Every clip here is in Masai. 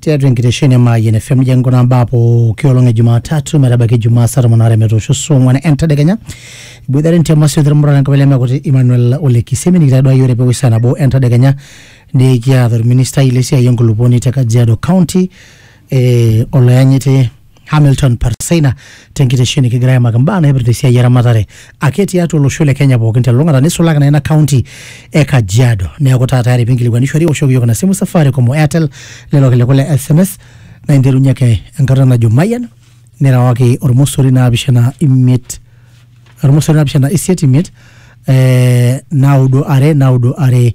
tiatua enkitesheni e Mayian FM nijo enkuna mbaa pooki olong e Jumatatu metabaiki Jumaa saa tomon aare metoosho saa ong'wan entadekenya iboitare ntiam asioki irmuran enkabila emekuti Emmanuel Ole Kisemi nikitaduaya ore pewosh saa nabo entadekenya nikiata orministai lesiai enkulupuoni te Kajiado County eh, oloyanyiti Hamilton Parseina tenkitesheni kigira aimaki mbaa naipirta esiai eramatare ake tiatua olosho le Kenya pookin telulung'ata nisulaki naa ina kaunti e Kajiado. Neeku taa tayari pinkilikuanishore iwoshoki iyiook ina simu Safaricom o Airtel lelo kiliku le SMS naa interunye ake enkata najo mayian nirewaki ormosori naapishana imiet ormosori naapishana isiet imiet eh, naudo are naudo are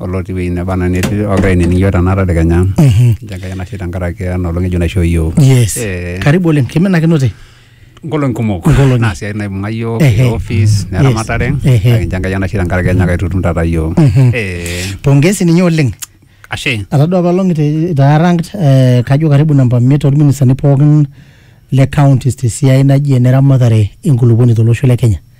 olotii wueji neba anaa netii ogira ainining iyiok tena tadekenya nchoo enkai enashe tenkaraki ena olong ng'ejuk naishoo iyiok yes Eh. karibu oleng kiminakinote nkolong'i kumok Nkolong'i. naa siai naibung'a iyiok Ehe. te office Yes. neramatare Ehe. kake nchoo enkai enashe tenkaraki enyaka aitutum taata iyiok Mhm. Eh, pongezi ninye oleng ashe atadua apaelong itaarangt eh, kajo karibu namba miet orministani pookin le counties tesiai naji eneramatare enkulupuoni tolosho le kenya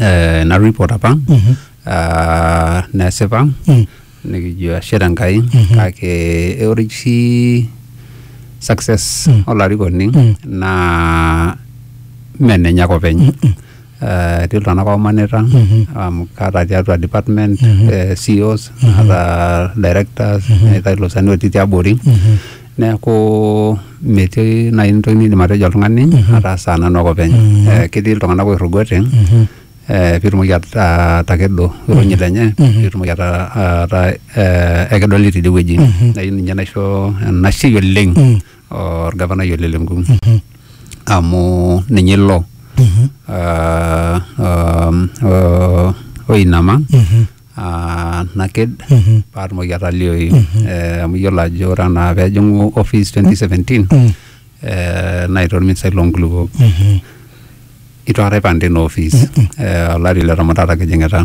eh, ina report apa Mhm. ah, nesipa Mm. nikijo ashe tenkai Mhm. kake eh, ore oshi success Mm. olarikoni Mm. naa menenye ake openy Mm-mm. Eh, etii iltung'anak oomanita Mhm. amu kaata tiatua department Mhm. eh, CEOs naata directors Mhm. neetae ilosani otii tiabori Mhm. Neeku metii naaji entoki nidim atejo oltung'ani ataasa nanu ake openy. Eh, Ketii iltung'anak oirrugote eh, pitumoki at- atakedo irunyi lenye pitumoki ata- ataa eh, ekedoli tidie wueji. Nai ninye naisho enashe oleng orgavanai ole Lenku amu ninye ilo ah, um, oh, oinama ah, naked Mhm. paatumoki atalioyu Eh, amu iyiolo ajo ore anaa peejing'u office 2017 Mm. eh, naita orministai loonkulupuok Mhm. itu aikata aipang tina office Eh, olari le tomon taata kijing'ita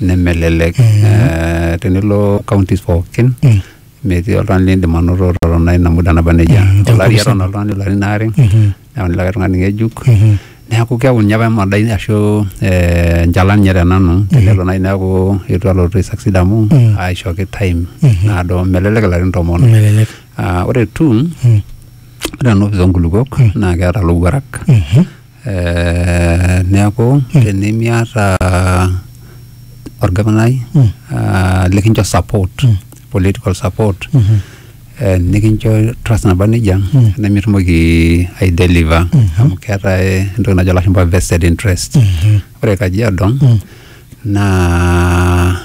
nemelelek Eh, tenilo counties pookin Mm. metii oltung'ani lindim anoto totona ina muda naba nejia Mm, tenkop olari eton musima. oltung'ani ilarin aare Mhm. neyauni likae tung'ani ng'ejuk neeku keeku ninye apa emadai ashu eh, enchalan ninye tenanu tenelo naaji neeku eitu alotu aisucceed amu aishooki time naado melelek ilarin tomon melelek Ah, ore tu ore ena opis oonkulukuok naa keeta lowuarak Eh, neeku tenimiata orgavanai ah, likincho support political support eh, nikincho trust naba nejia mm. nemitumoki aideliver mm -hmm. amu keetae entoki najo lashumpa vested interest mm -hmm. ore kajiado mm -hmm. naa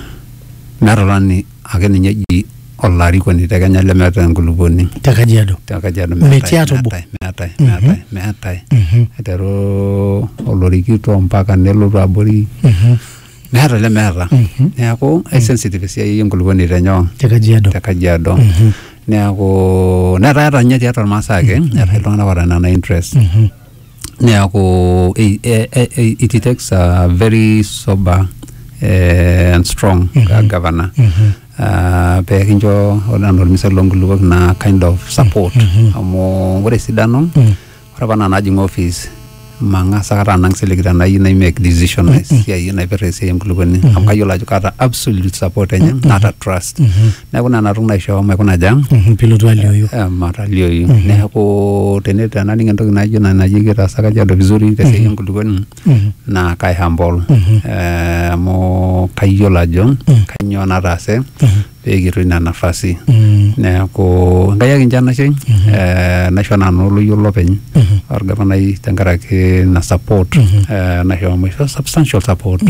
meeta olani ake ninye eji olarikoni te Kenya lemeeta enkulupuoni te Kajiado te Kajiado metii atobo meetae meetae meetae aiteru olorikito mpaka nelotu abori mm -hmm. meeta lemeeta Mhm. neeku aisensitive esiai enkulupuoni tenyoo te kajiado te kajiado Mhm. neeku netaa eeta ninye tiatua irmaasai ake eetae iltung'anak oota nena interest Mhm. neeku i- e- e- e- it takes a very sober eh, and strong Mhm. governor Mhm. Ah, pee kincho ore anaa ormisai loonkulupuok naa kind of support Mhm. amu ore esidano Mm. Ore apa nanu ajing office mang'as akata anang siligi tenayieu nai make decision mm -hmm. esiai naipirta esiai enkulukuoni mm -hmm. amu kayiolo ajo kaata absolute support enye mm -hmm. naata trust mm -hmm. neeku nena toki naishoo maikuna aja mm -hmm. pilotu alioyu eh, matalioyu mm -hmm. neeku tene tenaning entoki naijo ina naji kitaasa kajiado vizuri tesiai mm -hmm. enkulukuoni mm -hmm. naa kai humble mm -hmm. eh, amu kayiolo ajo mm -hmm. kanyoo nataase mm -hmm pee kitum ina nafasi neeku Enkai ake enchan nashe eh, naisho nanu oloyiolo lopeny orgavanai tenkaraki ina support eh, naisho amu isho substantial support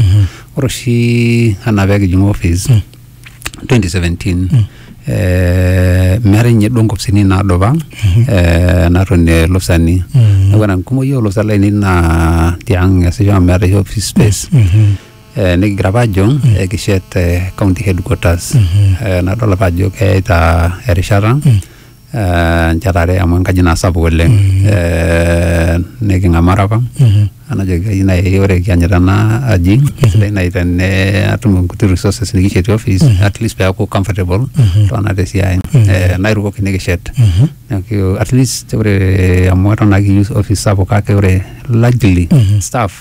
ore oshi anaa pee kijing office 2017 eh, meetae ninye duo nkopisini naadupa eh, natonie ilopisani neeku ore enkumoi olopisani lainei naa tiang eesisho amu meeta oshi office space eh, nikigira apa ajo eh, kishet eh, county headquarters Eh, nadol apa ajo keyaita erishata eh, nchetare amu enkaji naa sapuk oleng Eh, niking'amara apa anajoki kai nai ore kianyita ena aji sidai nai tene atum inkuti resources nikishetie office at least peaku comfortable tona tesiai Eh, nairukoki nikishet Neeku, at least ore amu eton naa kiyieu office sapuk kake ore largely staff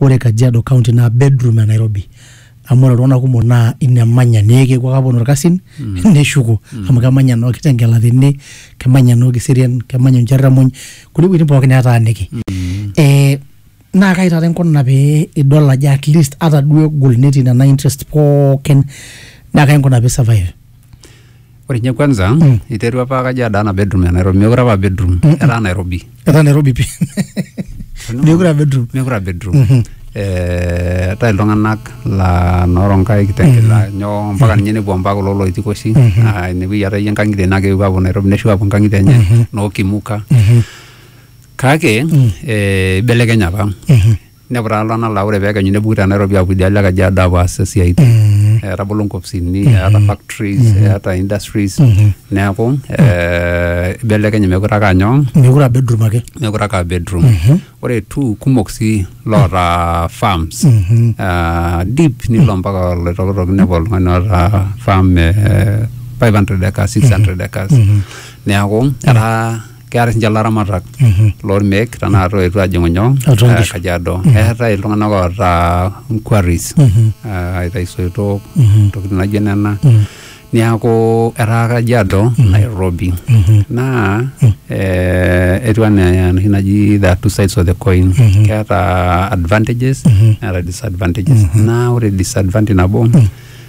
Ore Kajiado county naa bedroom e Nairobi amu ore iltung'anak kumok naa ine emanya neeku kepuo ake aponu irkasin neshuko amu kemanya noo Kitengela tene kemanya noo Kiserian kemanya oo Ncherramuny kulie wuejitin pooki neetaaniki eh naa kaji taata inkuna pee idol ajo atleast ata duo egol netii nena interest pookin naa kaji inkuna pee i survive. Ore nye kwanza mm. iterua apa Kajiado ana bedroom ya Nairobi, mekure apa bedroom, mm -mm. etaa Nairobi. Etaa Nairobi pi. Mekure apa bedroom. Mekure apa bedroom. Mm -hmm. Eh, eetae iltung'anak laa nooronkai kitengela mm. nyoo mpaka ninye nepuo mpaka kulo loitikoshi mm-hmm. ah, inepuoi aatayie nkang'itie naa kepuo aapuo Nairobi neshuko aapuo nkang'itie enye mm-hmm. noo Kimuka mm-hmm. kake eh, ibelekenya apa inepu taa iltung'anak laa ore pekenyu nepuku te Nairobi apuo idialo e Kajiado apuo aas isiaitin Mm. etabolo nkopisini eeta factories eeta industries neeku eh, ibelekenye mekure ake anyoo mekure aa bedroom ake mekure ake aa bedroom ore tu kumok sii loota farms Ah, deep nilo mpaka oloitokitok inepu oltung'ani oota farm eh, 500 acres 600 acres neeku etaa keeta sinche ilaramatak lormeek tenakata oetuo ajing'u nyoo Atua eh, nkishu. kajiado eetae iltung'anak oota quarries eh, aitayu isoitok intokitin naijo nena niaku etaa kajiado nairobi naa eh, etiu anaa enoshi naji the two sides of the coin keeta advantages neeta disadvantages naa ore disadvantage nabo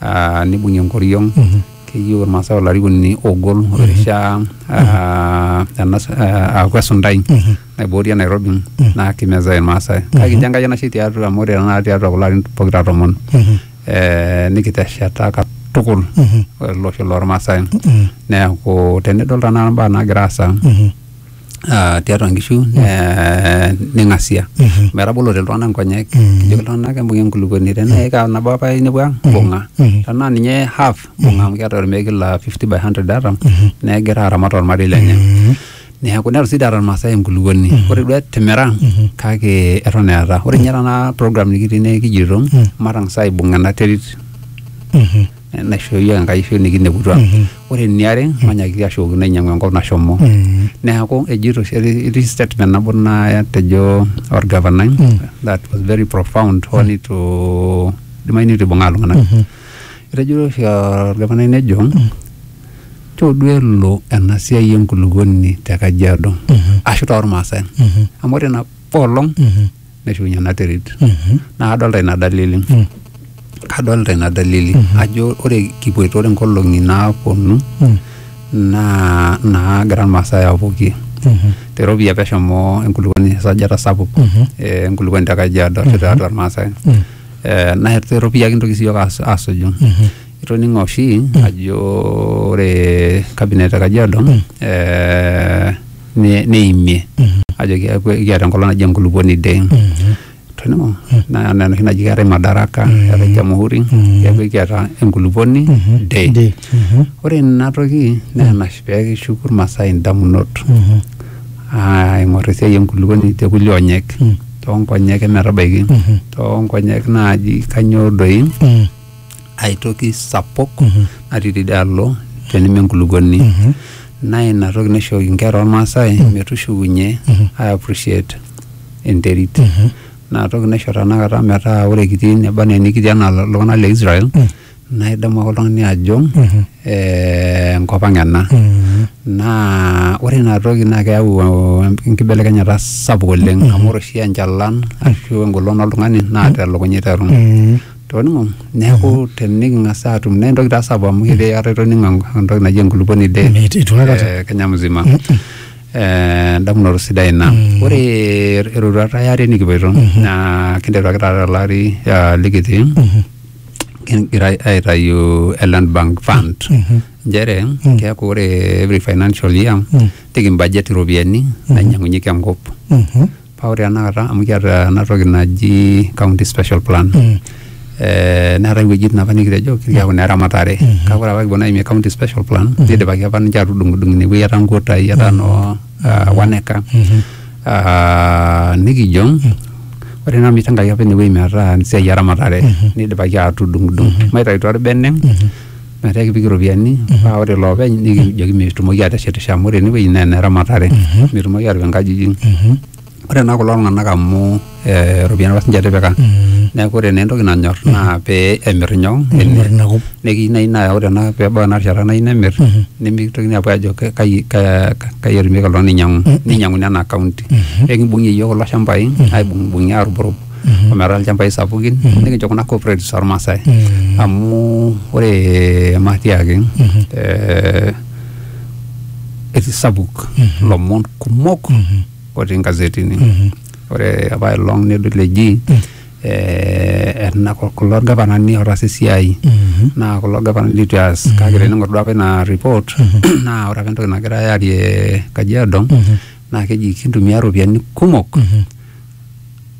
ah, nibung'ie enkoriong keyieu irmaasai olarikoni ogol orishaa ah, enas- ah, aaku esuntai naiboorie nairobi naa kimezai irmaasai kake kijo enkai enashe tiatua amu ore tenakata tiatua kulo arin pokira tomon eh, nikitesheta katukul ele osho lormaasai neeku tenidol tanakata imbaa naagira aasa ah, tiatua nkishu mm. eh, ning'asia mm-hmm. metabolote iltung'anak nkonyek mm-hmm. kijoki iltung'anak embung'e enkulukuoni tenaa mm-hmm. ika nabo apa inepu ang bunga tenaa ninye half bunga amu keeta ormeeki la 50 by 100 data negira aramat ormarei lenye neeku netu sii taata irmaasai enkulukuoni mhm. ore duo timira mhm. kake eton eeta ore ninye mhm. tana program nikitii naa ekijito matang'asa aibung ena terit naishooyio Enkai ashu nikineputua. Mm-hmm. Ore eniare mm-hmm. manyakiti ashukokino ainyiang'u enkop nashomo. Mm-hmm. Neeku ejito etii statement nabo natejo orgavanai mm. that was very profound hoo mm. nitu idimayu nitu ibung'aa iltung'anak. Etejo oshi orgavanai nejo mm. choo duo elo ena siai enkulukuoni te Kajiado ashu tormaasai. Amu ore ina olong neshukunye ena terit naa kadolta ina dalili kadolta ina dalili ajo ore kipuoito ore nkolong'i naaponu naa naagira irmaasai apuokie teropiyia peshomo enkulupuoni esajata sapuk eh, enkulupuoni te kajiado ashu tiatua irmaasai Eh, naa teropiyia kintoki siyiok as- asuju itoning'o oshi ajo ore kabinet e kajiado eh, ne- neimie ajo keaku ekiata enkolong naji enkulupuoni day toning'o naa enaa enoshi naji keetae madaraka eetae jamhuri keaku ekiata enkulupuoni day Day. Mhm. ore ina toki naa enash pee kishuku irmaasai indamunot Mhm. aa aing'or esiai enkulupuoni te kulie onyek toonkonyek emetabaiki toonkonyek naaji kanyoo doi Mm. aitoki sapuk natii tidialo teneme enkulukuoni naa ina toki naishooki inkera ormaasai metushukunye ai appreciate enterit naa toki naisho tanakata metaa ore kitii neba anaa enikitii anaa iltung'anak le Israel naa idamu ake oltung'ani ajo eh, enkop ang ena naa ore ina toki naa keyau eh, enkibelekenyata sapuk oleng amu ore oshi enchalan ashu engolon oltung'ani naa telukunya iteru toning'o neeku teniking'as atum naa entoki taa sapuk amu ketii eata itoning'o entoki naji enkulupuoni de Meit- eitu aikata. eh, Kenya mzima Eh, endamunoto sidai ina ore eroruata eare nikipoito naa kinteru ake taata tolari ah, likitii kigira aitayu e land bank fund nchere keeku ore every financial year nikimbudget iropiyiani nainyang'unyeki enkop Mhm. Paa ore tenakata amu kiata ena toki naji county special plan Mm. eh, neetae iwuejitin apa nikitejo kiaku ine ramatare kake ore apa kipuo naimie county special plan nidipaki apa ninche atudung'udung ine wueji etaa nkutai etaa noo ah, one acre Mhm. Ah, nikijo ore naa mitengaki apa ine wueji metaa esiai eramatare nidipaki atudung'udung maitayu taa orbene metaa ekipik iropiyiani paa ore iloopeny nikijoki metumoki aateshetisho amu ore enewueji naa eneramatare metumoki aatipik inkajijik ore naa kulo tung'anak amu eh, iropiyiani apa sinche etipika neeku ore naa entoki nanyorr naa pee emirr inyoo Emirr ina kop. nekiyieu naaji naa ore ena peebau ena rishata nayieu nemirr nemitokini aapuo aajo ke- kai ka- kai etumieki oltung'ani ainyiang'u ninyiang'uni ena county ekibung'ie iyiook kulo shambai aibung'ibung'ie aarubrub. mm-hmm. ometaa ilchambai sapukin mm-hmm. nikincho kuna cooperatives ormaasai mm-hmm. amu ore matiaki eh, etii sapuk lomon kumok otii ingazetini ore apa ilong nedol eji eh, ena kulo gavanani otaasa esiai naa kulo gavanani litu eas kake tening'or duo apa ina report naa ore apa entoki nagirae aarie kajiado naa keji kintumia iropiyiani kumok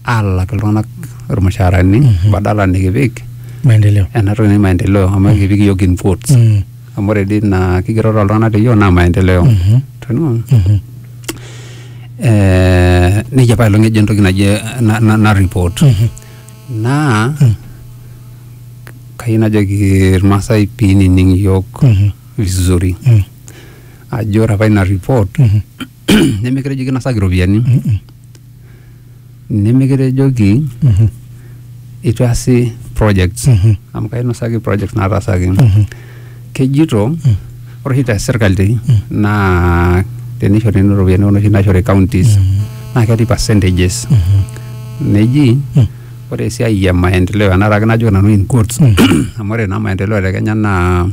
aalak iltung'anak irmushaarani badala nikipik maendeleo ena toki naji maendeleo amu ekipik iyiook in quotes Mm, amu ore dii naa kigeroro oltung'anak te yiok naa maendeleo mhm, Toning'o? mhm. Eh, nejia apa elong ejo entoki naji na- na- naripot Mhm. naa Mm. kayieu najoki irmaasai piinining iyiok Mhm. vizuri Mm, ajo ore apa ina report mhm. nemikitejoki kinasaki iropiyiani nemikitejoki itu easi projects amu kainosaki projects nataasaki kejito ore oshi te sirkali naa tenishori nena ropiyiani kuna oshi naishori counties naa ketii percentages neji ore esiai e maendeleo ena taake najoki nanu in quotes amu ore naa maendeleo te Kenya naa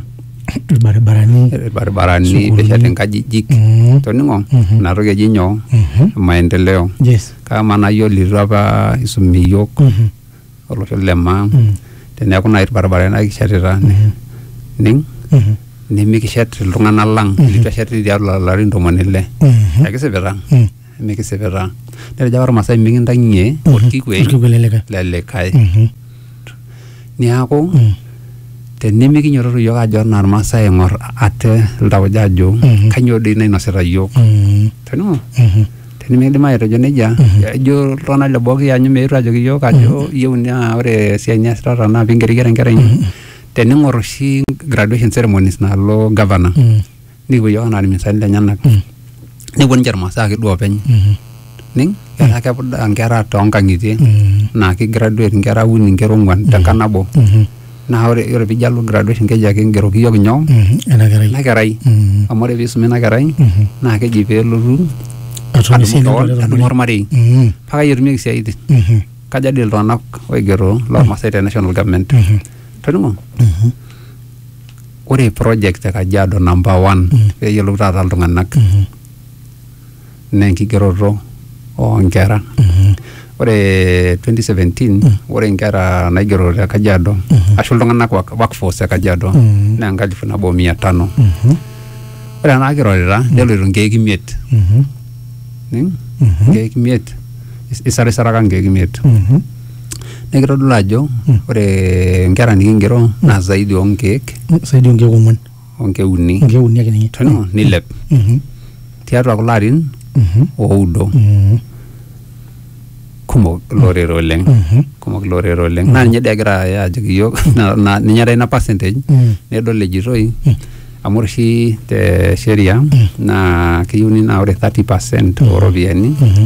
ilbaribarani ilbaribarani Sukuulini. nesheti nkajijik Mm. toning'o Mhm. inatoki eji nyoo Mhm. maendeleo yes kama nayiolo itu apa isumi iyiok Mhm. olosho le maa Mm. teneeku naaji ilbaribarani naa kishetita ning Mhm. nimikishet iltung'anak lang Mhm. litu eshet tiatua ilarin ntomoni ile Mhm. ekisipita Mm. mikisipita netejo apa irmasae mikintang'ie orkikuei Orkikuei lelikae. lelikae Mhm. niaku Mm. tenimikinyototo yiok ajo anaa irmasae aing'or ate iltauja ajo Mhm. kanyoo doi nainosita yiok Mm. tenimu Mhm. tenimikidim atejo nejia ejo iltung'anak le boo kianyu meetu ajoki yiok ajo iyieu naa ore esiai niasitata naa pingeriger enkerai ino tening'or oshi graduation ceremonies nalo governor Mm. nikipuo yiok anaa irmisani lenyenak nepuo ninche irmasaa ake duo openy ning etaa kepudaa nkera toonkang'itie naa ki graduate nkera uni nkera ong'uan tenkang nabo naa ore ore pijo alo graduation keji ake ingeroki yiok nyoo ena kerai ina kerai Mm. amu ore piisumi ina kerai Mhm. naa keji peelotu atum adumu esiai kewon nalelek adumu olmarei. ormarei Mhm. paka etumieki isiaitin Mhm. kaja dii iltung'anak oigero lormasai te national government Mhm. toning'o Mhm. ore project e Kajiado number one mm. pee eyiolou taata iltung'anak mm -hmm. naa enkigeroto oonkera mm -hmm. ore 2017 mm. ore inkera naigero te Kajiado mm -hmm. ashu iltung'anak workforce e Kajiado mm -hmm. naa enkalifu nabo mia tano mm -hmm. ore enaa kirorita mm -hmm. neloito nkeek imiet mm -hmm. nkeek imiet isarisaraka nkeek imiet mm -hmm. Naa kitodolu ajo ore nkera nikigero naa zaidi oo nkeek saidi onkeek ong'uan o nkeek uni onkeek uni ake ninye teno nilep Mhm, tiatua kulo arin mhm, oudo mhm, kumok ilorere oleng mhm, kumok ilorere oleng naa ninye dii egira aya ajoki iyiok na- na- ninye taata ina percentage mhm. nedol ejitoi amu ore oshi te sheria naa keyieuni naa ore 30 percent ooropiyiani Mhm.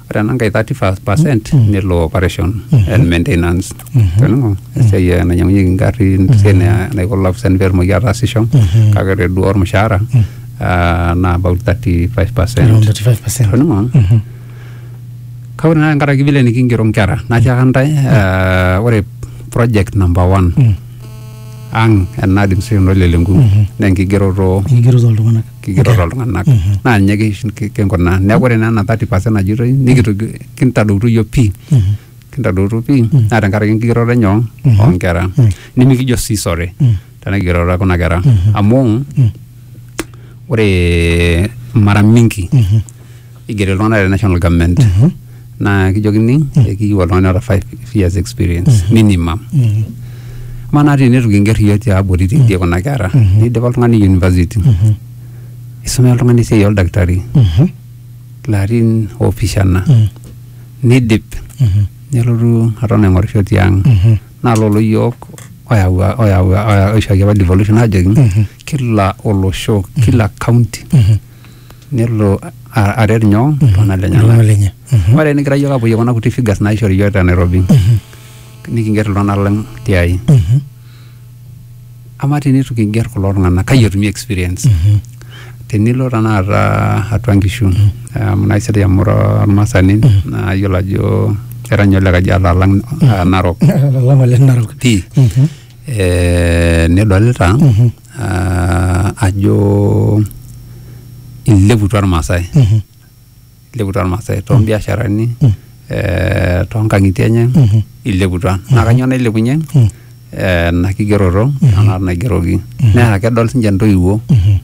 ore ena nkae 35 percent nelo operation and maintenance toning'o esiai eh, nainyiang'unyieki ingarrin esiai na- naiko lopisani petumoki ataasisho kake ore duo ormushaara ah, naa about 35 Around percent 35%. toning'o kake ore naa tenkaraki vile nikingero nkera natiaka ntae eh, ore project number one ang ena administration olelenku naa enkigeroto Enkigeroto oltung'anak. kigero toltung'anak naa ninye kish- ki- kinkunaa neeku ore naa ena 30 percent najitoi nikitoki kintadoutuo iyiook pii kintadoutuo pii naa tenkaraki enkigeroto enye oo- oonkera nimikijo sii sore tena kigeroto e kuna kera amu ore mara mingi igeri iltung'anak te national government naa kijokini ekiyieu oltung'ani oota five years experience minimum amaa naa tenitu kinger iyiook tiabori tidie kuna kera nidipa oltung'ani university isumea oltung'ani esiai oldakitari ilarin opishana nidip nelotu aton aing'orisho tiang naa lolo yiok oyawua oyawua oya- oishooki apa devolution ajoki kila olosho kila county nelo aret nyoo iltung'anak lenyenak. Iltung'anak lenye. Mhm. Ore nikigira yiok apuoyie kuna kuti figures naishori yiok te Nairobi mhm. nikinger iltung'anak lang tiai. Mhm. Amaa tenitu kinger kulo tung'anak kai etumi experience? Tenilo tenakata atua nkishu amu naa isidai amu ira olmasani naa iyiolo ajo era ninye ole Kajiado alang Narok. Alang ole Narok. Pii. Eh, nidolita uh, ajo ileputua irmaasai mm -hmm. ileputua irmaasai toombiasharani mm -hmm. eh, toonkang'itie enye mm -hmm. ileputua mm -hmm. naa kanyoo nailepunye mm -hmm. eh, ena kigeroto mm -hmm. anaa naigeroki mm -hmm. naa kedol sinche intoiwuo mm -hmm.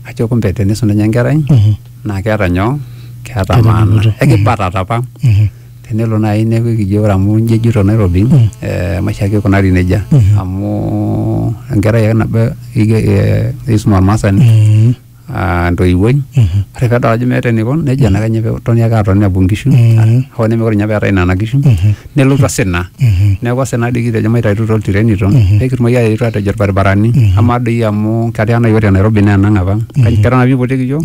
ajo kumbe tenisum ninye enkerai mm -hmm. naa keeta nyoo keeta maana ekibatata apa mm -hmm. tenelo naaji neeku ekijo ore amu inji ejito Nairobi mm. eh, maisha ake ikunari nejia mm -hmm. amu enkerai ake nabo eh, isum ormaasani mm -hmm. Ah, ntoiwuoi mhm. ore pedol ajo meeta enikon nejia naa kenya toni ake atoni apuo nkishu mhm. hoo nemekure ninye peetae nena kishu mhm. nelotu asina neeku asina doi kitejo maitaitutu oltirenito pekitumoki aetu atejo irbaribarani amaa doi amu ketaa nai ore nairobi naa enang apa keton apa ipotiki yiok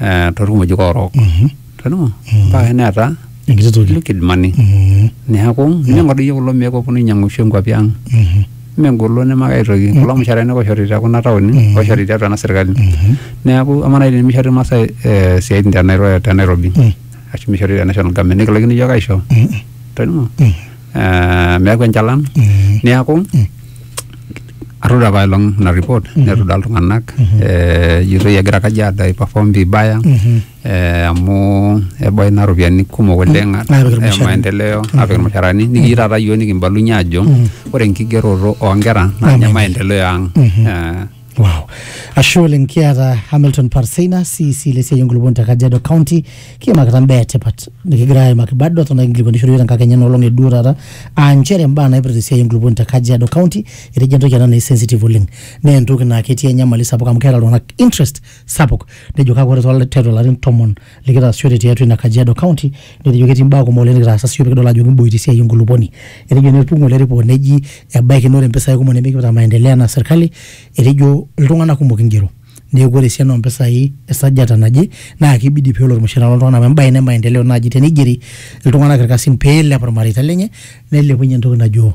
eh, torkimojik orook toning'o mpaka neeta enkiti toki liquid money Mhm. neeku ninyang'u doi kulo meek oponu ainyang'u oshi nkuapi ang Mhm. megolo nemakae toki kulo mushaarani ake oishori tekuna taoni Mhm. oishori tiatua ena sirkali Mhm. neeku amaa naaji tenimishori irmaasai eh, isiaitin te Nairo- te Nairobi Mhm. ashu mishori te national government nikilaikino iyiook aisho Mhm. toning'o Mhm. eh, meeku enchalan neaku atoduaa apailong ina report netoduaa iltung'anak eh, ejitoi egira Kajiado ai perform vibaya eh, amu ebaya ina ropiyiani kumok oleng Naapik eh, irmushaarani. maendeleo apik irmushaarani nikijo taata yiok nikimbalunye ajo ore enkigeroto oonkera naa ninye maendeleo ang Eh, Wow. Ashe oleng kiata Hamilton Parseina CC le siai enkulupuoni te Kajiado County kiimakita imbaa etipat nikigira aimaki bado eton ake inkilikuanishore iyiook tenkakenya ena olong e duo taata aa nchere imbaa naipirta esiai enkulupuoni te Kajiado County etejo entoki ena naa sensitive oleng naa entoki naa ketii enyamali sapuk amu keeta iltung'anak interest sapuk nejo kake ore too tiatua ilarin tomon likitaasishore tiatua ina Kajiado County netejo ketii imbaa kumok oleng nikitaasa siyiok pikidol ajo kiboita esiai enkulupuoni. Etejo neipung ng'ole report neji ebaiki naa ore impisai kumok nemikipikita maendeleo enaa serkali etejo iltung'anak kumok ingero neeku ore esiana oompisai esajata naje naa kibidi peelo ormushaara loltung'ani amu embae ina e maendeleo naaji teneigeri iltung'anak irkasin peelep irmareita lenye neilepunye entoki najo